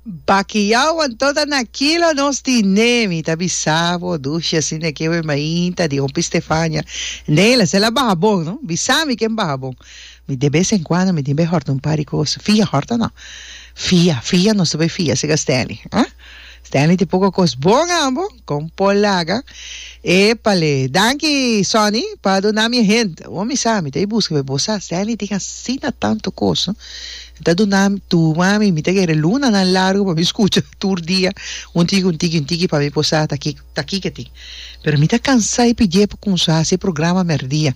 Bakiau anto ta na kilo nos di nee mi ta bisa bo dushi asi ne ke we mainta di hopi Stefania nee la sela baha bon no bisa mi ken baha bon mi de bes en cuando mi tin bay horta un par di cos fia horta no fia fia nos ta bay fia sega Stanley ah. Stanley tin poko kos bon ambo kon por laga. Epale. Danki Sonny pa duna mi e hint. Awor mi sa, mi ta e buska, pero bo sa Stanley tin asina tanto kos no. E ta duna mi tur wami, mi ta kere lunanan largo pa mi skucha tur dia un tiki un tiki un tiki pa mi por sa ta kiko. Ta kiko e tin. Pero mi ta cansá e pidié pa cunsá haci e programa merdia.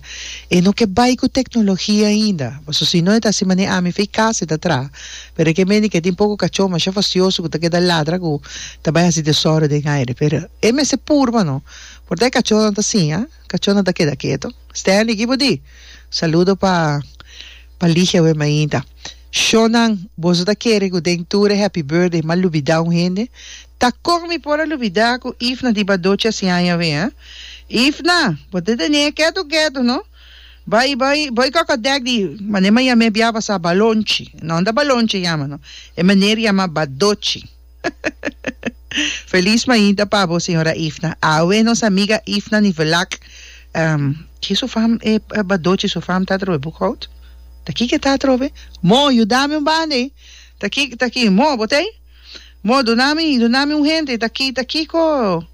E no ke bai cu tecnologia ainda. Paso si no e ta haci mané ami fey casa e ta traha. Pero e ke mende ke tin poco cachó masha facioso cu ta keda ladra cu ta bai haci desorden aire. Pero e mester purba no. Por ta e cachónan ta siña. Cachónan ta keda keto. Stanley, ki bo di? Saludo pa. Pa ligia we mainta. Shonan, boso ta kere cu den tur e Happy Birthday m'a lubida un hende? Ta con mi por a lubida cu Ifna di ba doce así aña awe, eh? Ifna, bo ta tene e ketu ketu, no? Bay, bay, bay koko a dek di, mane m'a yam'é bia pasá, Balonchi. No, no ta Balonchi a yama, no. E maner yamá ba doce. Feliz mainta pa bo señora Ifna. Awe nos amiga Ifna ni Velak. Um, chi su fam e eh, bado chi su fam ta atrobe Boekhout? Taki ke ta atrobe? Mo, yudami un banda ei. Taki, taki, mo, botei? Mo, dunami, dunami un hende. Taki, taki ko.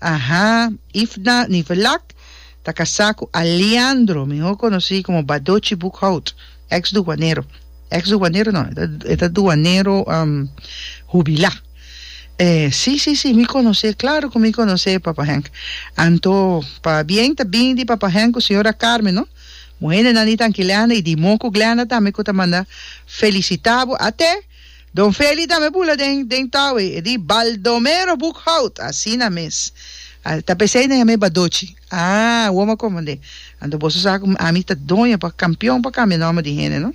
Aha, Ifna Nivelak ta casá cu Aleandro, mihor conocí como Badochi Boekhout, ex duanero, ex duanero no, e ta duanero hubilá. E, sí, sí, sí, mi conocé, claro cu mi conocé, Papa Henk. Anto, pabien ta bini di Papa Henk cu Señora Carmen, no? Muhende nan di Tanki Glenda y di Moku Glenda tambe cu ta manda felicitá bo, até. Don Feli tambe bula den den Tawey, e di, Baldomero Boekhout, asina mes. A ta pesey den amey Badochi. Ah, wom a komandé. Anto boso sa ku ami ta doño pa kampion pa kambia nòmber di hende, no?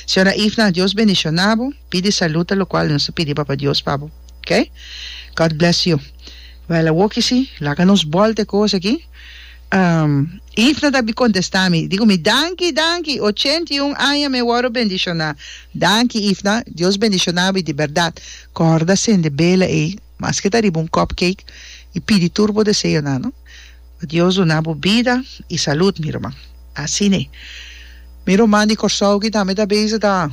Señora Ifna, Dios bendishoná bo. Pidi salud ta lokual nos ta pidi Papa Dios pa bo, oke? God bless you. Wèl a woki si, laga nos bòl t'e kos aki. Eve no tabata contesta mi. Dico mi, Danki, danki. Ochenta i un aña me wòrdu bendiciona. Danki, Eve na. Dios bendiciona bo di berdad. Corda sende bela ei, maske ta riba un cupcake, i pidi tur bo deseo nan. Bo Dios duna bo bida i salud, mi ruman. Asine. Mi ruman di Corsou aki tambe ta bezig ta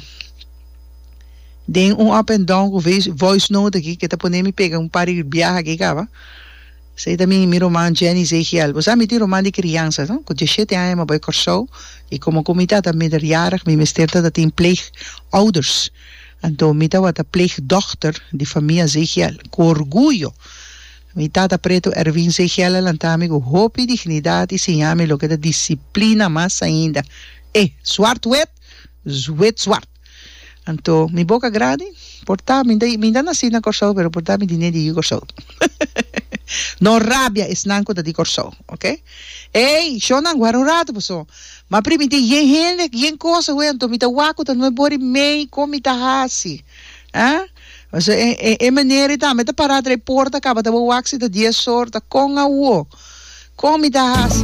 den un up and down cu voice note aki, ke ta pone mi pega un par di biaha aki caba. Esei ta mi mi ruman Jenny Zeegiel. Bo sa mi tin ruman di kriansa no? Ku diashete aña mi bai Kòrsou i komo ku mi tata minderjarig mi mester ta ta tin pleegouders. Anto mi tabata pleegdochter di famia Zeegiel. Ku orguyo mi tata pretu Ervin Zeegiel a lanta mi ku hopi dignidat i siña mi loke ta disiplina mas ainda. E! Zwart wit, wit zwart! Anto mi boca grandi por ta mi ta mi ta naci na Corsou pero por ta mi di ne di Corsou no rabia esnan cu ta di Corsou ok ey shonan guara un rato paso ma pri mi tin yen hende yen cosa hui anto mi ta wak cu ta nuep body mey con mi ta haci ah pasobra e e e manera y ta mi ta para tra e porta caba ta bo wak si ta dies or ta con awo con mi ta haci.